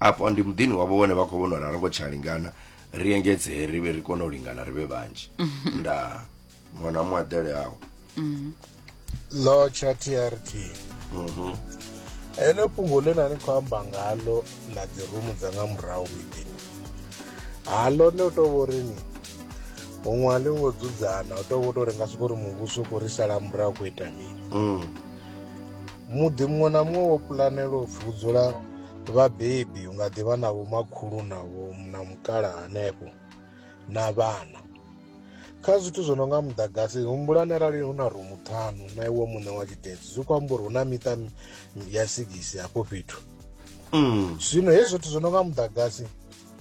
afho ndi muḓini wavho vhone vha khou vhona uri a ri ngo tsha lingana ri engedzee ri vhe ri kone u lingana ri vhe vhanzhi nda ṅwana wa muaḓele awo lo tsha trt ene fhungo ḽe na ni khou amba ngalo ḽa dzi rumu dza nga murahu miḓini halo ne u tou vha uri ni huṅwe a ḽi ngo dzudzana u tou vha u tou ri nga soko uri muvhuso u khou ri sala murahu khou ita mini muḓi muṅwe na muṅwe wo pulanela u pfi u dzula vhabebi u nga ḓivha na vhomakhulu na vho na mukala hanefho na vhana kha zwithu zwo no nga muḓagasi humbulani arali hu na rumu ṱhanu na iwe muṋe wa tshidedzi zwi khou amba uri hu na miṱa ya sigisi hafho fhethu mm. zwino hezwi zwithu zwo no nga muḓagasi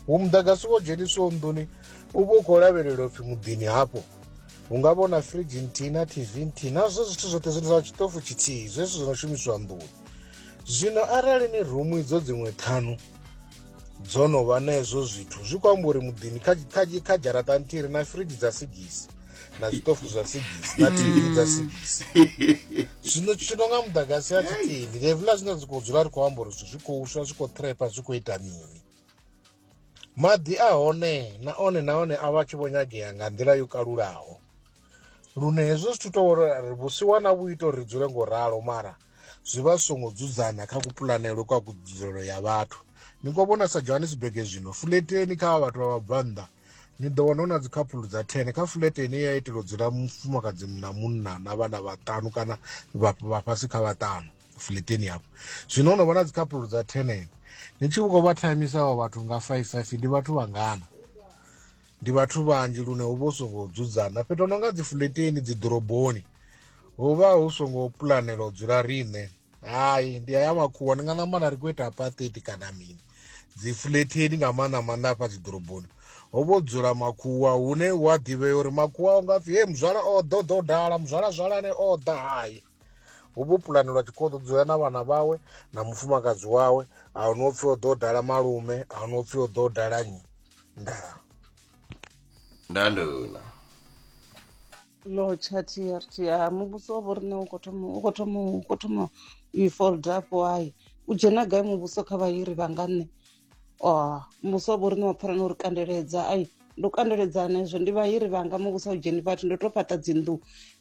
hu muḓagasi wo dzheniswaho nḓuni u vha u khou lavhelela upfhi muḓini hafho hu nga vhona fridge nthihi na tv nthihi nazwo zwithu zwoṱhe zwi zwa tshitofu tshithihi zwezwi zwi no shumiswa nḓuni zwino arali ni rumu idzo dziṅwe ṱhanu dzo no vha na hezwo zwithu zwi khou amba uri muḓini kha dzharaṱa nthihi ri na fridge dza sigisi na zwiṱofu zwa sigisi na tv dza sigisi zwino tshino nga muḓagasi ya tshitini levula zwine zwi khou dzula ri khou amba uri zwithu zwi khou swa zwi khou trepa zwi khou ita mini maḓi a hone na one na one a vha tshi vho nyagea nga nḓila yo kalulaho lune hezwo zwithu tou uri ri vhusiwana vhu ita uri ri dzule ngo ralo mara zwi vha zwi songo dzudzana kha kupulanelwe kwa kudzulelo ya vhathu ni ko vhona sa johannesburg zwino fuleteni kha vhathu vha vhabvannḓa ni ḓo wana hu na dzikhaphulu dza ten kha fulete ine ya itela u dzula mufumakadzi na munna na vhana vhaṱanu kana vha vha fhasi kha vhaṱanu fleteni hafho zwino ho no vha na dzikhapulo dza tenene ni tshi khou vha thamisaho vhathu nga five five ndi vhathu vhangana ndi vhathu vhanzhi lune hu vha hu songo dzudzana fhethu no nga dzi fleteni dzi ḓoroboni hu vha hu songo pulanela u dzula riṋe hai ndi aya makhuwa ndi nga ṋamba na ri khou ita apatheti kana mini dzi fleteni nga maanḓa maanḓa afha dzi ḓoroboni ho vho dzula makhuwa hune wa ḓivhea uri makhuwa u nga pfhi he muzwala o ḓo ḓo dala muzwala zwalane o ḓa hayi hu vho pulanelwa tshikhoḓo dzoya na vhana vhawe na mufumakadzi wawe a hu no pfhi o ḓo dala malume a hu no pfhi o ḓo dala nyi ndaa ndanduna lotsha trt ha muvhuso wa vho riṋe u khou thoma u khou thoma u khou thoma u i fold up why u dzhena gai muvhuso kha vhahiri vha nga nṋe oh, musi wa vho ri ni mapfhara no ri kandeledza ai ndo kandeledzana izvo ndi vahiri vanga muvhusa u dzheni vhathu ndo to fhaṱa dzinnḓu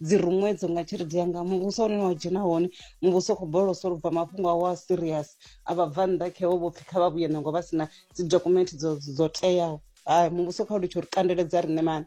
dzi ruṅwedzo nga tshelede yanga muvhusa une wa dzhena hone muvhusa u khou bolosa lu bva mafhungo awo a serious a vha bva nnḓa khewo vho pfhi kha vha vhuye nango vha si na dzi document dzo teaho hai muvhuso kha u litsho ri kandeledza riṋe mani